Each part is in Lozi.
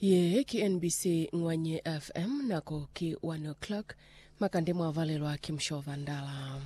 Ye ki NBC Ngwanye FM, nako ki 1 o'clock, makande mwa valelwa ki Musho Vandala.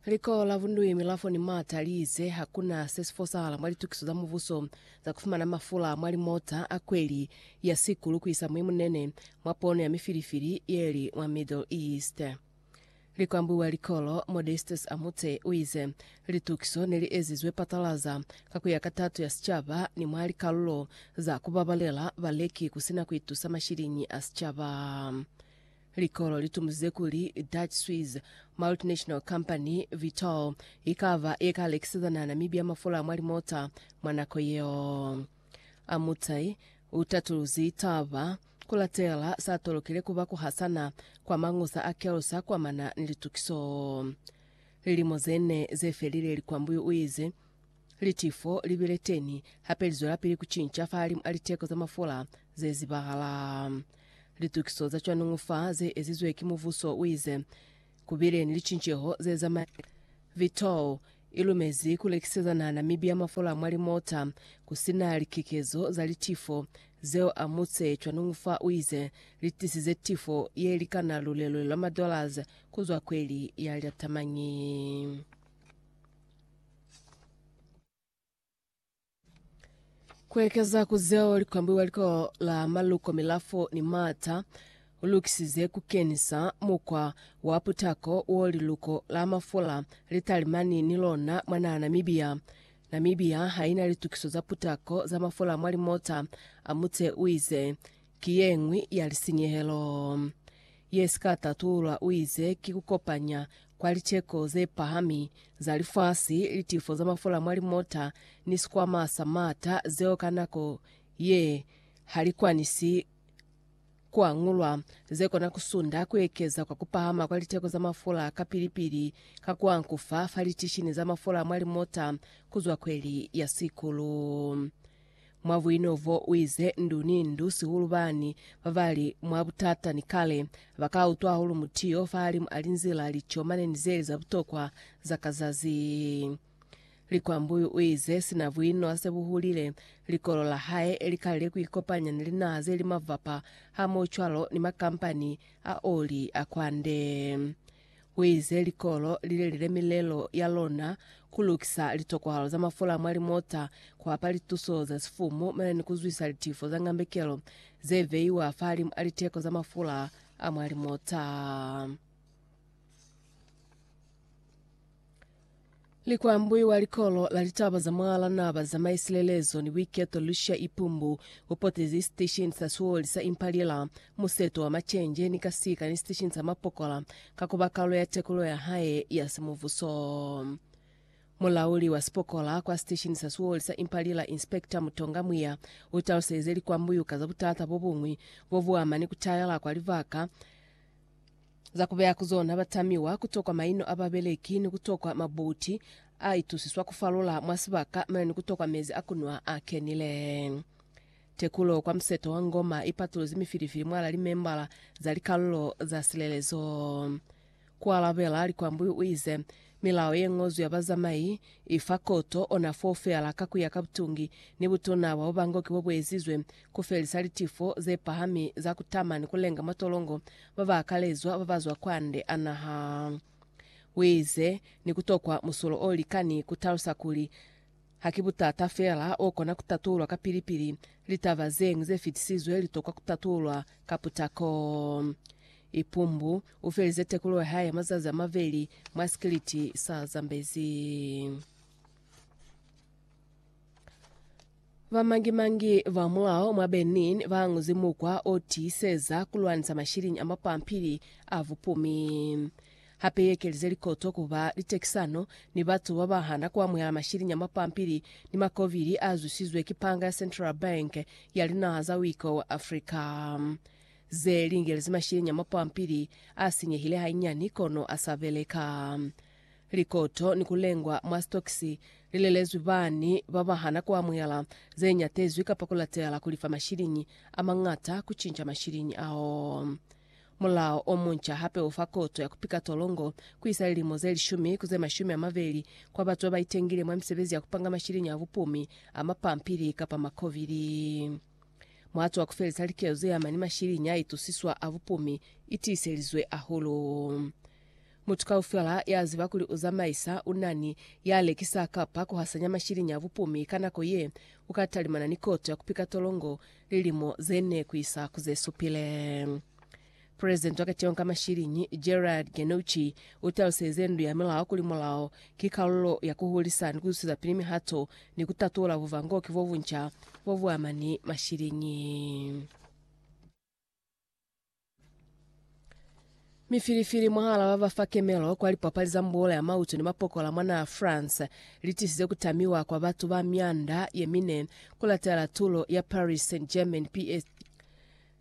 Liko la Vundui Milafo ni Mata li ize hakuna se si fosahala mwa litukiso za mubuso za kufumana mafula mwa limota a kweli ya sikulu kuisa mwi munene mwa pono ya mifilifili yeli mwa Middle East. Likwambi wa likolo, Modestus Amutse, u ize, Litukiso ne li ezizwe patalaza ka ku ya ka tato ya sicaba ni mwa likalulo za ku babalela baleki ku si na ku itusa mashiliñi a sicaba. Likolo li tumuzize kuli Dutch-Swiss multinational company Vitol i ka ba ye ka lekisezana Namibia mafula a mwa limota mwa nako yeo. Amutse u tatuluzi taba Ku latela sa tolokile ku ba ku hasana kwa mañusa a kelo sa kwamana ni litukiso. Lilimo ze ne ze felile Likwambuyu u ize, Litifo li bile teni, hape li zwelapili ku cinca fahalimu a liteko za mafula ze zibahala. Litukiso za cwanuñu fa ze ezizwe ki mubuso, u ize. Ku bile ni licinceho ze zamaile. Vito i lumezi ku lekiseza nana mibi ya mafola mwa limota ku si na likekezo za litifo zeo amutse cwanungu fa u ize li tisize tifo ye likana lulelo la ma dollars ku zwa kweli ya lya tamañi. Ku ekeza ku zeo li kwambuiwa Likolo la Maluko Milafo ni Maata u lukisize ku kenisa mukwa wa putako wo liluko la mafula li talimani ni lona mwa naha Namibia. Namibia ha i na litukiso za putako za mafula mwa limota, a Mutse u ize. Ki yeñwi ya lisinyehelo ye si ka tatulwa, uize, ki kukopanya kwa liceko ze pahami za lifasi, litifo za mafula mwa limota, ni sikwama sa maata, zeo ka nako ye ha li kwanisi ku angulwa, ze kona ku sunda ku ekeza kwa kupahama kwa liteko za mafula kapili-pili ka ku ankufa fa litishini za mafula mwa limota kuzwa kweli ya sikulu. Mwa buino bo, u ize, Ndu ni ndu, sihulu bani ba ba li mwa butata ni kale, ba ka utwa hahulu mutu yo fahalimu a linzila lico mane ni zeli za butokwa za ka zazi. Likwambuyu u ize, Sina buino a se bu hulile, likolo la hae li kalile ku ikopanya ni linaha ze li mavapa, hamoho cwalo ni makampani a oli a kwande. Huize likolo lilelile milelo yalona, kulukisa litokwahalo za mafula mwa limota, kuapa lituso za sifumu mane ni kuzwisa litifo za ngambekelo zeveiwa fahalimu a liteko za mafula a mwa limota. Likwambwi wa likolo la litaba za mwa la naba za maisilelezo ni buiketo Lucia Ipumbu upotezi sitesheni sa suoli sa Impalila museto wa machenje ni kasika ni sitesheni sa mapokola ka kuba kalu ya tekulo ya hae ya simuvuso. Mulauli wa sipokola kwa sitesheni sa suoli sa Impalila Inspector Mutonga Mwiya utaluselize likwambwi uka za butata bobuñwi bobuama ni kutayela kwa libaka Za kubeya ku zona ba tamiwa ku tokwa maino a babeleki ni ku tokwa mabuti a itusiswa ku falula mwa sibaka mane ni ku tokwa mezi a kunwa a kenile. Tekulo kwa museto wa Ngoma i patuluzi mifilifili mwala limembala za likalulo za silelezo. Ku alabela likwambu u ize, Milao ye ñozwi ya bazamai i fa koto ona foo feela ka ku ya ka butungi ni butuna bwa bubangoki bo bu ezizwe ku felisa litifo ze pahami za ku tama ni ku lenga matolongo ba ba akalezwa ba ba zwa kwande a naha, wize ni ku tokwa musulo o likani ku talusa kuli Ha ki butata fela o kona ku tatulwa kapili-pili, litaba zeñwi ze fitisizwe li tokwa ku tatulwa ka putako. Ipumbu u felize tekulo ya hae ya mazazi a maveli mwa sikiliti sa Zambezi. Bamangi-mangi ba mulao mwa Benin ba añuzi mukwa o tiiseza ku lwanisa mashiliñi a mapampili a bupumi. Hape i ekelize likoto ku ba litekisano ni batu ba ba hana ku amuhela mashiliñi a mapampili ni makovili a zwisizwe ki panga ya Central Bank ya linaha za Wiko wa Afrika. Ze lingelezi mashiliñi a mapampili a sinyehile hainyani kono a sa beleka. Likoto ni ku lengwa mwa stokisi li lelezwi bani ba ba hana ku amuhela ze nyatezwi kapa ku latela ku lifa mashiliñi a mañata ku cinca mashiliñi ao. Mulao o munca hape u fa koto ya ku pika tolongo ku isa lilimo ze lishumi ku ze mashumi a mabeli kwa batu ba ba itengile mwa misebezi ya ku panga mashiliñi a bupumi a mapampili kapa makobili. Muhatu wa ku felisa likezo ze ama ni mashiliñi a itusiswa a bupumi i tiiselizwe hahulu. Mutu kaufela ya ziba kuli u zamaisa, u na ni ya lekisa kapa ku hasanya mashiliñi a bupumi ka nako ye, u ka talimana ni koto ya ku pika tolongo lilimo ze ne ku isa ku ze supile. Presidenti wa Keteho ka Mashiliñi, Gerard Genucci, u taluselize Ndu ya Milao kuli mulao ki kalulo ya ku hulisa ni ku zusezapili mihato ni ku tatula buvangoki bo bunca bo bu ama ni mashiliñi. Mifilifili mwahala ba ba fa kemelo kwa lipapali za mbuola ya mautu ni mapokola mwa naha France litisize kutamiwa kwa batu ba mianda yemine kulatela tulo ya Paris Saint-Germain PSG.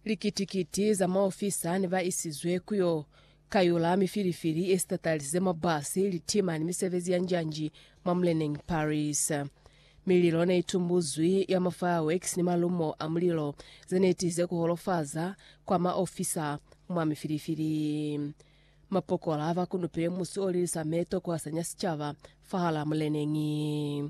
Likiti-kiti za maofisa ne ba isizwe kuyo kayula mifilifili yesitatalisize mwa basi, litima ni misebezi ya njanji mwa muleneñi Paris. Mililo ne itumbuzwi ya ma fireworks ni malumo a mulilo ze ne tize ku holofaza kwa ma ofisa mwa mifilifili. Mapokola ba kunupile musi o lilisa meto ku hasanya sicaba fahalaa muleneñi.